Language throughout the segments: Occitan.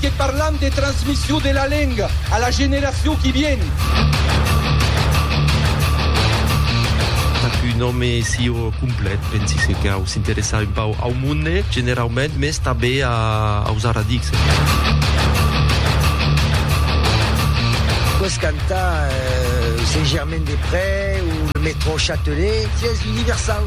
Que parlam de transmission de la lenga a la generacion qui vien. Tap un òme sieu complet, pensi se cau s'interessar un pauc au monde generaument, mès tanbe aus aradics. Poiss cantar Saint-Germain-des-Prés ou le métro Châtelet, sies universau.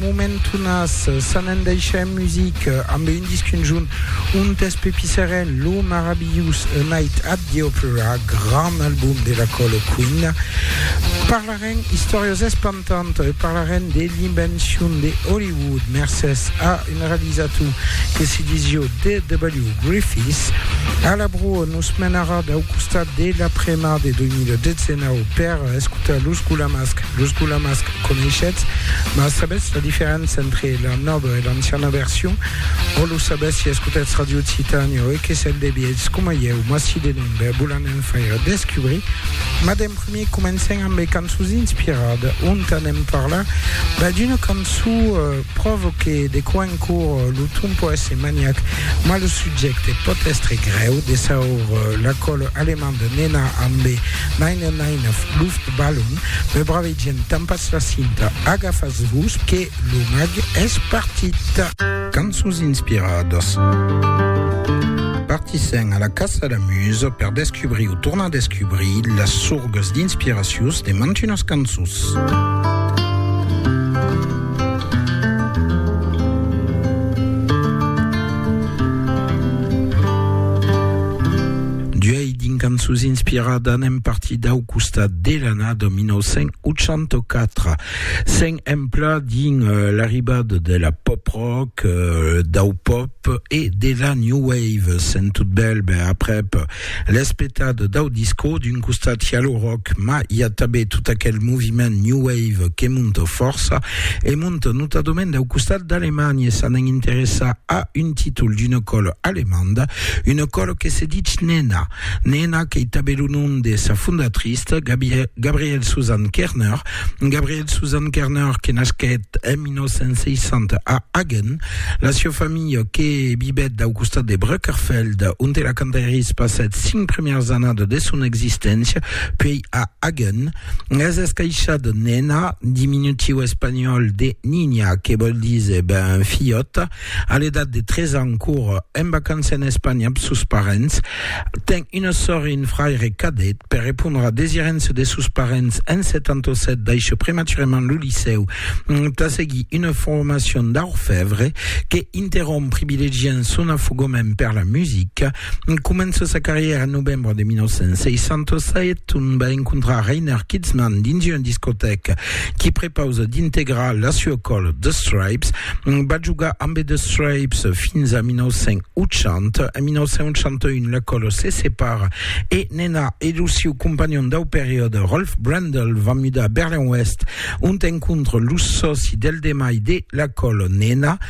Momentonas s'an endaishà en musica ambe un disc conjunt ontes Pepi Serén, Lo marabilhós A Night at the Opera, grand album de la Còlo Quina, parlarem istòrias espantantas e parlarem de l'invencion de Hollywood mercés a un realizator que se disió DW. Griffiths. A la broa nos menarà dau costat de la premar de 2019 per escotar Los Gulamasc. Los gulamas que coneishetz, mas sabètz la diferéncia entre la nòva e l'anciana version? Ò lo sabètz si escotètz Ràdio Occitània ò EQSL de vièlhs coma ieu, mas si de non, ben vos l'anem faire descubrir. Mas d'en primier comencem amb de cançons inspirades, ont anem parlar ben d'una cançon pròvo que de quan en quor lo ton pòt èsser maniac, mas lo subjècte pòt èstre grèu, de saur La Colle Allemande Nena ambe 999 Luftballon. Me brave gent, tampas la cinta, agafas-vos que lo mag es partit! Cançons inspiradas. Partissèm a la caça la musa per descubrir o tornar descubrir las sorgas d'inspiracions de mantunas cançons. Dins cançons inspirada anem partir dau costat de l'annada 1984, sent empla dins l'arribada de la pop-rock, dau pop e de la new wave. Sent tot bèl, ben aprèp l'es petada dau disco, d'un costat i a lo rock, ma i a tanben tot aquel moviment new wave que monta fòrça e monta notadament dau costat d'Alemanha e s'anèn interessar a un títol d'una còla alemanda, Una còlo que se dich Nena. Nena qu'ei tanben lo nom de sa fondatrice, Gabrielle Susan Kerner. Gabrielle Susan Kerner que nasquèt en 1960 a Hagen. La sieu familha que vivèt dau costat de Brückerfeld, onte la cantairis passèt cinc primièrs annadas de son existéncia, puèi a Hagen, es escaishada Nena, diminutiu espanhòl de Niña, que vòl díser ben filhòta. A l'edat de 3 ans cor en vacança en Espanha amb sos parents. Ten una sòr e un fraire cadet. Per repondre a desirença de sos parents en 77 daishè prematurament lo licèu tà seguir una formacion d'orfèvre que interromp privilegiant son afogament per la musica. Comença sa carrièra en novembre de 1967, ont va encontrar Reiner Kitzman dins una discotèca qui prepausa d'integrar la sua còla The Stripes. Va jogar ambe The Stripes fins a 1980. En 1981 la còla se separa e Nena e lo siu companhon dau periòde Rolf Brendel van mudar a Berlin-Oèst, ont encontra los sòci del demai de la còla Nena,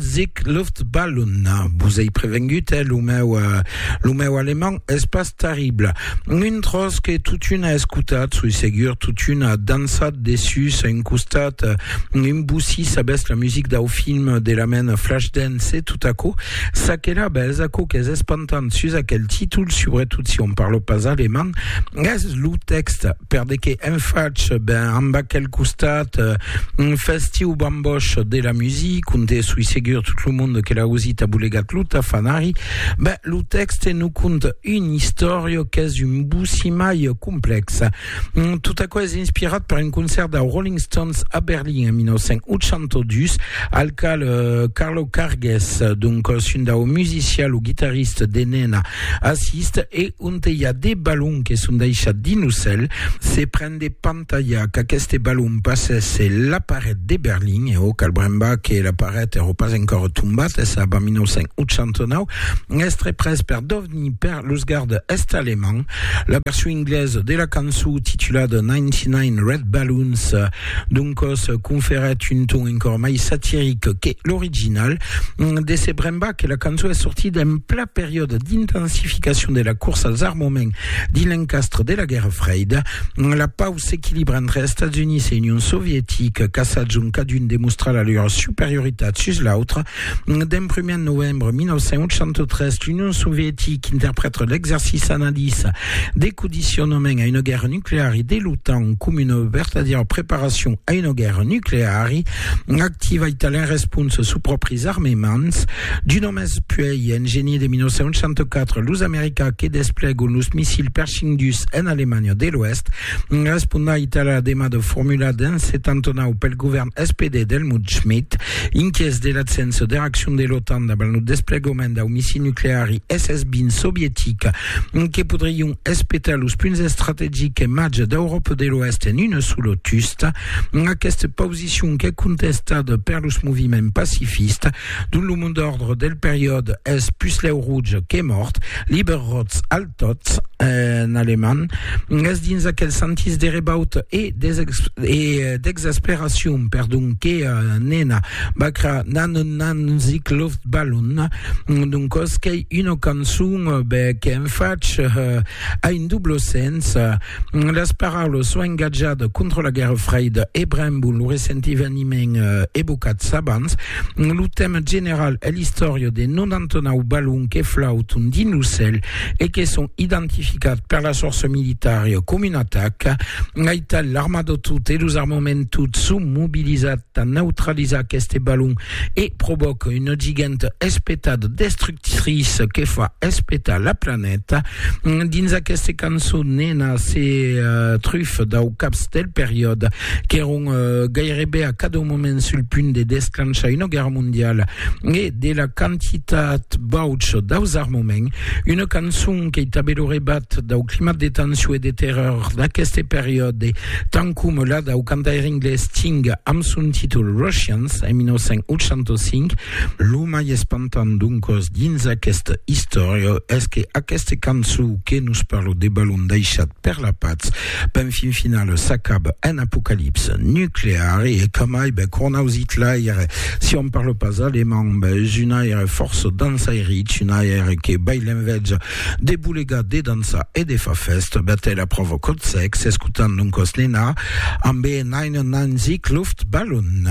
Sic Luftballon, vos ei prevengut, eh, lo meu, lo meu alemand es pas terrible. Un tros que totuna escotat, soi segur, totuna dansat dessus un costat, un boussi, sabètz, la music dau film de la mena Flashdance e tot aquò, ça que la bèz, aquò qu'es espantant sus aquel títol, subretot si on parlo pas alemand, es lo tèxt, per de qué en fach, ben, amb aquel costat festiu, Bosch de la musique, conte sui segur tout le monde que la usit a bolegat lo tafanari, ben lo texte nous conte une histoire qu'es un boussimaille complexe. Mm, tout aquò es inspirat per un concert de Rolling Stones a Berlin en 1982, al cal euh, Carlo Carges, donc euh, un dau musicien, lo guitariste de Nena, assiste e on te hi a des ballons que son deixats dins lo cèl, se pren des Talha qu'aqueste balon passèsse la paret de Berlin, e o cal brembar que la paret èrò pas encòra tombat, es ab a 1989, estre pres per Dovny per los garde est alemand. La version inglesa de la cançó titulada 99 Red Balloons doncòs conferèt un ton encòra mai satiric que l'original. De se brembar que la cançó es sortida en pla periòde d'intensificacion de la corsa als armaments Dins l'encastre de la Guèrra Freida, la pau s'equilibra entre Estats Units e Union Sovietica, caçats ont cadun demostra la lor superioritat sus l'autre. D'en prumèr en novembre 1983, l'Union Sovietica interprèta l'exercici anadís de codicionament a una guèrra nucleari de l'OTAN coma una vertadièra preparacion a una guèrra nucleari activa e talent responsa sus pròpris armements. Mas puèi, en genier de 1964, los americans que desplegam los missils Pershing dus en Alemanha de l'Oèst respondait a la demada formulada en 79 pel govèrn SPD d'Helmut Schmidt, inquiets de l'atsença de reaccion de l'OTAN davant lo desplegament dau missil nucleari SS-20 sovietic que podrion espetar los punts estrategics e màger d'Euròpa de l'Oèst en una sola tusta. Aquesta pausicion qu'es contestada per los moviments pacifistes Dont lo mont d'òrdre del periòde es puslèu rouge que mòrt, liber rotz, altotz en alemand, es dins aquel sentís de rebaut e d'exasperacion, perdon, que Nena Bacra n'a non nanzic Loftballon, d'un còs qu'ei una cançon, ben, qu'en fach a un doble sens, Las paraulas s'au engatjat contra la Guèrra Freida e brembon lo recent eveniment evocats abans. Lo tèma general es l'istòria de 99 balons que flauton dins lo cèl e que son identificats per las fòrças militaria coma una ataca. Aital, l'armada tot e los armaments tot son mobilizats tà neutralizar aqueste balon e provòca una giganta espetada destructriça que fa espetar la planeta. Dins aquesta cançon, Nena se trufa dau caps del periòde qu'èron gairebe a cada moment sul punt de desclanchar una guèrra mondiala e de la quantitat baucha daus armaments. Una cançon qu'ei tanben lo rebat dau climat de tension e de terror d'aqueste periòde Tant coma la dau cantaire anglés Sting amb son títol Russians en 1985, lo mai espantant doncòs dins aquesta istòria es que aquesta cançó que nos parla de balon daishat per la patz, ben fin finala s'acaba en apocalipsa nucleara e que mai ben cornaus Hitlair, si òm parla pas alemand, ben es un aire fòrça dansairich, un aire que bai l'envètja. De bolegar, de dançar e de far fèsta, Bertèla pròva còth sèc, s'escotant non còth ninà, ambe un ain un ain zic, luft, balon.